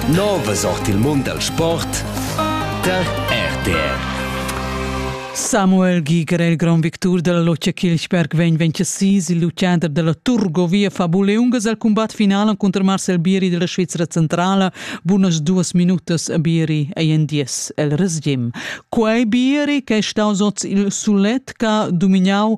Nova sort il mund dal sport tar RTR. Samuel Giger è il grand victur della Loccia Kilchberg vegn 26 il luciander della Turgovia fa buleungas al combat finale contro Marcel Bieri della Svizzera centrala bunas duas minutas a Bieri ei en dies el resgim. Quei Bieri che è staus oz il sulet ca dominau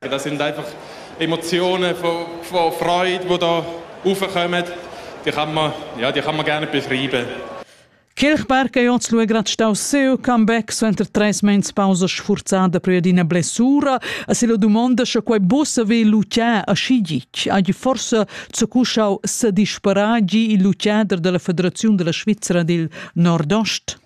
Das sind einfach Emotionen von, von Freude, die da raufkommen. Die kann man, ja, die kann man gerne beschreiben. Kirchberg ja zu gerade stau seu comeback suenter tres mens pausa sfurzada per d'ina blessura a se la domanda sche quei bus ve Lucia a Schigic agi forse zu cuschau se disparagi il Luciader della Federazione della Svizzera del Nordost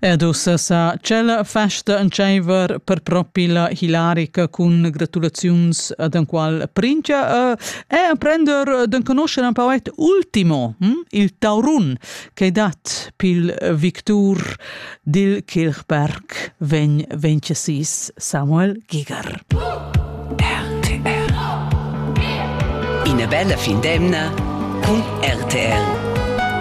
Ed ussa sa tschella festa entscheiver per propi la hilarica cun gratulaziuns ad enqual prince uh, e emprender d'enconoscher un poet ultimo, hm? il taurun, che dat pil victur dil Kirchberg vegn vencesis Samuel Giger. Ina bella fin d'emna cun RTL.